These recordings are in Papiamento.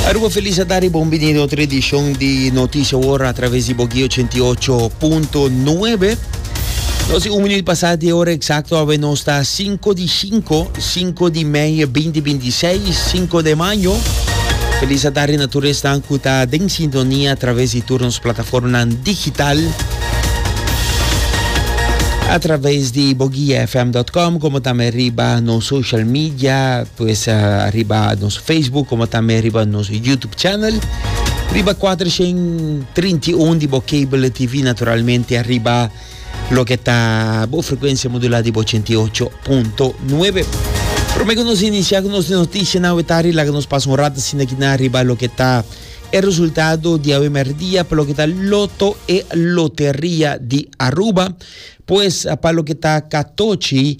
Aruba Feliz a dare bon bini na otro edishon di Noticia World a traves di Boki 88.9. Nos un minuut pasa di ora exacto awe nos ta 5 di 5, 5 di mei 2026, 5 de mayo. Feliz a dare na tur esnan ku ta den sintonia a traves di tur nos plataformanan digital. A traves di bogiafm.com como tambe riba nos social media Pues riba nos Facebook como también riba nos YouTube channel. Riba 431 di bo cable TV naturalmente arriba lo que está bo frecuencia modulada di bo 88.9. Pero me que nos inicia con nos noticia na wetari la que nos pasa un rato sin aquí na arriba lo que está el resultado di awe merdia para lo que está loto e loteria di Aruba. Pues para lo que está Katochi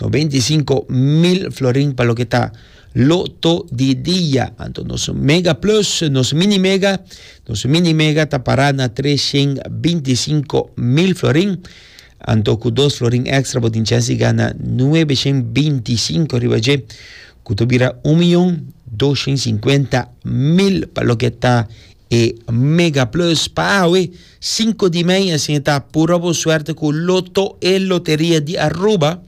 95 mil florin pa loke ta loto di dia. Anto nos mega plus, nos mini mega, nos mini mega ta para na 325 mil florin. Anto ku dos florin extra bo tin chance di gana 925 riba dje, ku ta bira un millón 250 mil pa loke ta E Mega Plus pa awe, sinku di mei, asina ta pura bo suerte ku Loto e Loteria di Aruba.